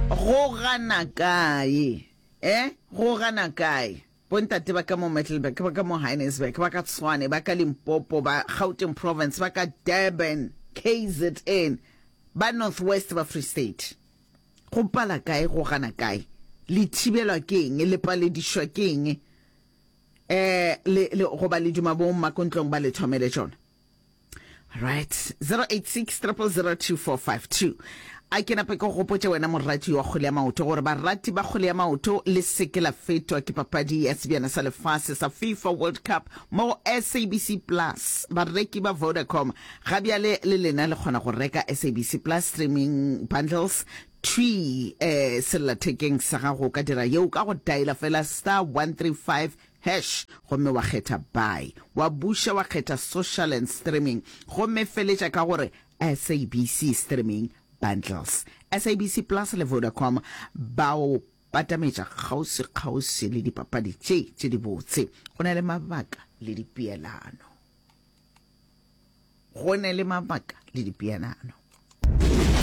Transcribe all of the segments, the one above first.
go gana kae e go gana kae bontate ba ka mo mettleburg ba ka mo hinesburg ba ka tshwane ba ka limpopo ba gauteng province ba ka durban kzn ba north west ba free state go pala kae go gana kae le thibelwa ke eng le paledišwa ke eng um le goba le duma bo mmakontlong ba le thomele tšona right 086 000245 a ke nape ke gopotse wena morati wa kgole ya maoto gore barati ba kgole ya maoto le seke la fetwa ke papadi ya sebjana sa lefase sa fifa world cup mo go sabc plus bareki ba vodacom ga bjale le lena le kgona go reka sabc plus streaming bundles twi eh, sellathekeng sa gago ka dira yeo ka go diala fela star 135 Hash, gomme wa kgetha Buy. Wa buša wa kgetha Social and Streaming, gomme feletša ka go re SABC Streaming Bundles. SABC Plus le Vodacom ba o patametša kgauswi-kgauswi le dipapadi tše tše dibotse. Go na le mabaka le dipeelano. go ne le mabaka le dipeanano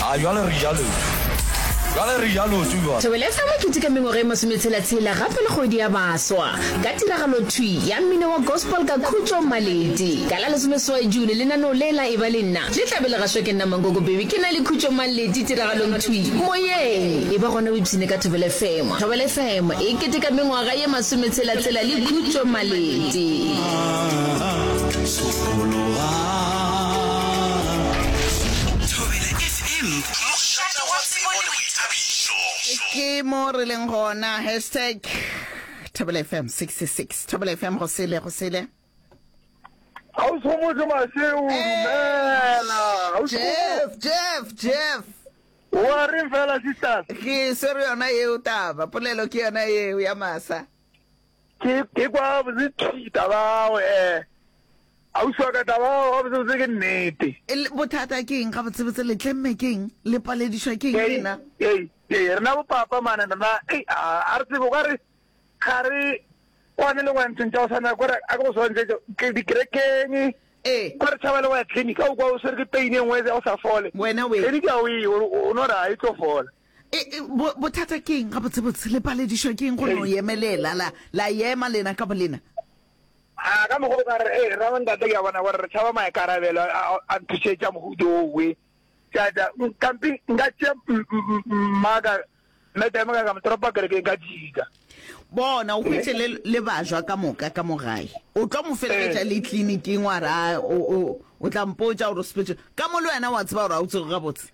a ah, jalo re jalo jalo re jalo tsuwa thobelesa makete ka mengwaga e masometshela-tshela gape le kgwedi ya baswa ka tiragalo thwi ya mmino wa gospel ka khutso maledi ka la lesomeswae june lenaneo le la e ba le nna le tlabe le gaswa ke nna mankoko bebi ke na le khutso maledi tiragalong thwi moyeng e ba gona o ipshine ka thobele fm thobele fm e kete ka mengwaga ye masometshela-tshela le khutso maledi ke mo re leng gona hashtag thobela fm 66 thobela fm go sele go sele ausomotle maseo dumela jeff jeff jeff wa reng fela sisters ke swere yona eo taba polelo ke yona eo ya masa ke kwa botse thi tabago eh ausi wa ka tabago ga botse botse ke nnete bothata ke eng ga botse botse le tlemme ke eng le paledišwa ke eng rena ee rena bopapa mane rena ei a re tsebo ka re ga re kwane le ngwantsheng tša go tshwana kore a ke go swantšetso ke dikerekeng kwa re tšhaba le go ya clinic a o kwa o swere ke pain e nngwe ya go sa fole clinic ya o e o no ra e tlo fola E, e, bothata ke eng gabotsebotse le paledišwa ke eng go no yemelela la la yema lena ka bolena a ka mogo ka re e eh, ramantate ke a bona gore re tšhaba maikarabelo a nthušetša mohuto owe tata kampe nka tšea mmaka metame ka ka motoropa kerekeng ka dika bona o hwetse le le bajwa ka moka ka mogae o tlo mo feleletša eh. le tleliniking wa ra o tla mpotsa gore o sepetse ka mo le wena wa tseba gore ga o tsego gabotse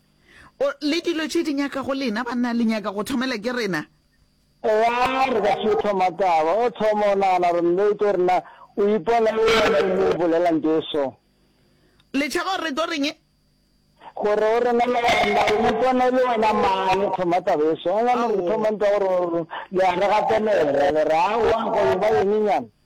O, le dilo tše di nyaka go lena, banna, le nyaka go thomela ke rena. Eya, re ka se thoma taba. O thoma o nagana gore nnete gore na o ipona e le wena e mo bolelang ke eso. Le tšhaba gore re tlo reng? Gore o rena le gore na o ipona e le wena mang, o thoma taba eso. Ga nyane re thoma ntwa gore le a re gatelela, le re, Aowa, go e ba eng nyana?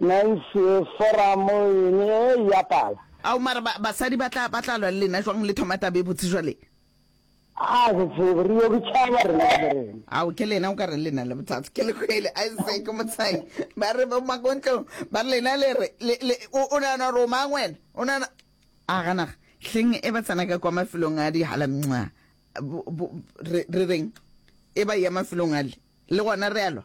Nancy, Foramo e ne e ya pala. Ao, mara ba, basadi ba tla, ba tla lwa le lena jwang le thoma taba e botse bjale? A re tsebe, re yo ke tšhaba rena ka borena. Ao, ke lena o ka re le na le bothata. Ke le kwele, Isaac Motshayi. Ba re bo Makontlong, ba re lena le re, le, le, o, o nagana gore o mang wena? O nagana, a ga naga, hleng e ba tsena ka kwa mafelong a dihala mnxa, bo, bo, re, re reng, e ba ya mafelong ale, le gona re a lwa.